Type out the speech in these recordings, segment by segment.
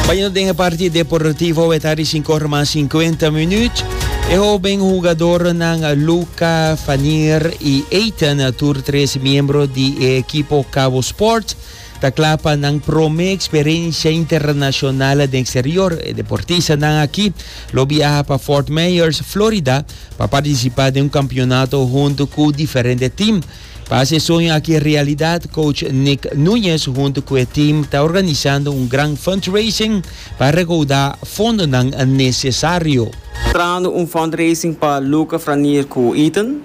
Bayendo den e parti deportivo e tari sin kor mas 50 minuut. E hoben hugadornan Luca, Fanier i Eitan, tur tres miembro di e ekipo Cabo Sport, ta kla pa nan prome eksperensia internashonal den eksterior. E deportistanan aki lo biaha pa Fort Myers, Florida, pa partisipá den un kampionato huntu ku diferente tim. Pa hasi e soño aki realidad, coach Nick Nuñez hunto cu e team ta organisando un gran fundraising pa recauda fondonan necesario. Trahando un fundraising pa Luca Franier cu Ethan,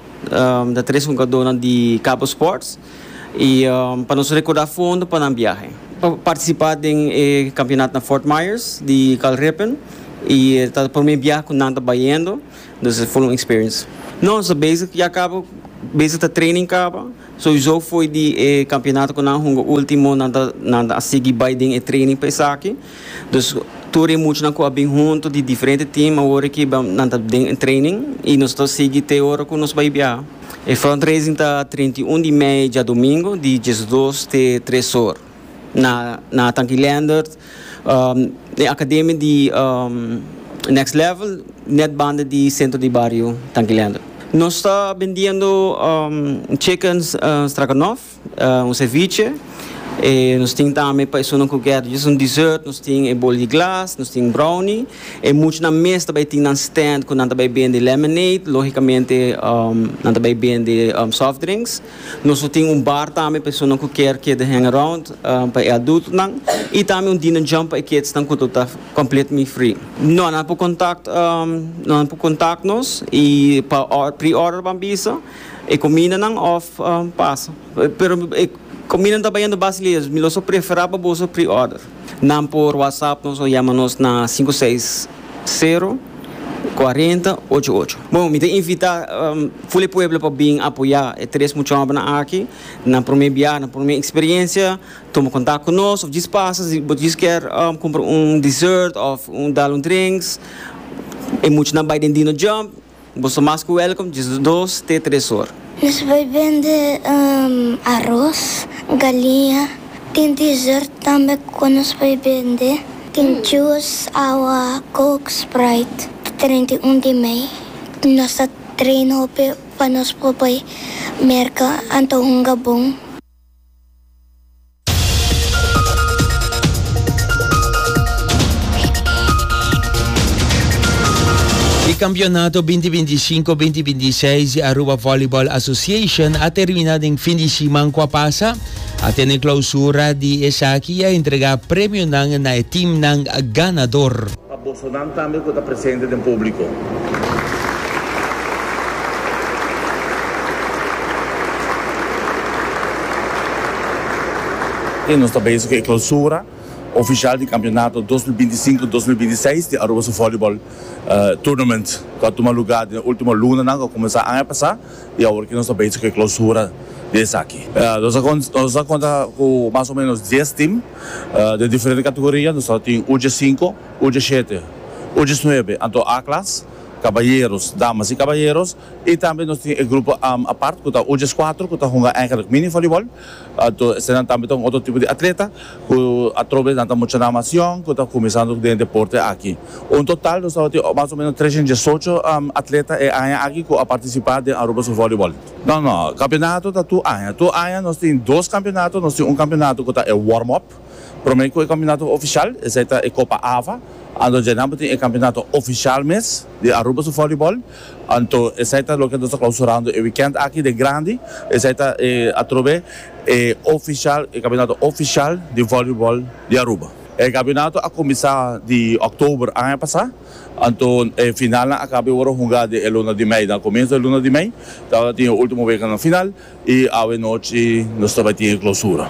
ta tres hungadornan di Cabo Sports, y pa nos recorda fondo pa nan biahe. Pa participa den e campeonato na Fort Myers di Kalrepen y ta prome biahe cu nan ta bayendo. Nos a full un experience. Nos ta bezig ya kaba, bezig ta training kaba. Souizo fo'i di e campeonato cu nan hunga ultimo nan ta nan ta a sigui bai den e training pa esaki. Dus tur e muchanan cu a bin hunto di diferente team awor aki nan ta den e training y nos ta sigui te ora cu nos bai biaha. E fundraising ta treinta i un di mei djadomingo di diesdos te tres or. Na Nathan Gilendert, den Akademia di Next Level, net banda di Sentro di Bario Nathan Gilendert. Nos ta bendiendo Chicken Stroganoff, un ceviche, e nos tin tambe pa esunnan cu quier djis un dessert, nos tin e bol di glas, nos tin brownie. E muchanan mes ta bay tin nan stand cu nan ta bay bende lemonade, logicamente nan ta bay bende soft drinks. Nos lo tin un bar tambe pa esonan ku kier keda hang around pa e adultonan i tambe un dinner jump pa e kidsnan ku lo ta completely free. No, nan por contact nan por contact nos i pa pre-order ban bisa e comidanan of pasa. Pero e comidanan ta bayendo basileros mi lo so prefera pa boso pre-order. Nan por whatsapp nos o yama nos na sinku seis sero kuarenta ocho ocho. Bon mi ta invita ful e pueblo pa bin apoya e tres muchanan aki na prome biaha na prome eksperensia tuma kontak ku nos of djis pasa si bo djis kier kumpra un dessert of dal un drinks e muchanan bai den dino jump. Bo sta mas ku wèlkom Jesus dos te tres or. Nos bai bende aros, galiña. Tin dessert tambe ku nos bai bende. Tin jus, awa, coke, sprite. Di treinta i un di mei nos ta train hopi pa nos por bai merka anto hunga bon. E campeonato binti binti i sinku binti i binti i seis di Aruba Volleyball Association a termina den fin di siman ku a pasa. A tene clausura di esaki i a entrega premionan na e teamnan ganador. Bosonan tambe ku ta presente den públiko. E nos ta bezig ku e Clausura ofishal di kampionato dos mil binti sinku, dos mil binti seis di Aruba su Volleyball Tournament ku a tuma lugá den e último lunanan ku a kuminsá aña pasá i awor ke nos ta bezig ku e Clausura di esaki. Nos a konta ku mas o ménos dies tim. Den diferente kategoria nos a tin ucha sinku, ucha shete, uchas nuebe, anto A-klas, kabayeros, damas i kabayeros, i tambe nos tin e grupo apart ku ta uchas kuater ku ta hunga eigenlik mini volibol, anto eseinan tambe ta un otro tipo di atleta ku atrobe nan ta mucha namacion ku ta kuminsando den e deporte aki. Un total nos tabatin mas o menos trescientos diesocho atleta e aña aki ku a partisipá den Aruba su volibol. No no, campeonato ta tur aña. Tur aña nos tin dos campeonato, nos tin un campeonato cu ta e warm up. Prome cu e campeonato oficial, esey ta e Copa Ava, anto dje nan bo tin e campeonato oficial mes di Aruba su volleyball. Anto esey ta loke nos ta clausurando e weekend aki den grandi, esey ta e atrobe e oficial, e campeonato oficial di volleyball di Aruba. E campeonato a cuminsa di oktober aña pasa. Anto e finalnan a kaba e worde hungá den e luna di mei den komienso e luna di mei. Tabata tin e último wekanan final i awe nochi nos ta bai tin e klosura.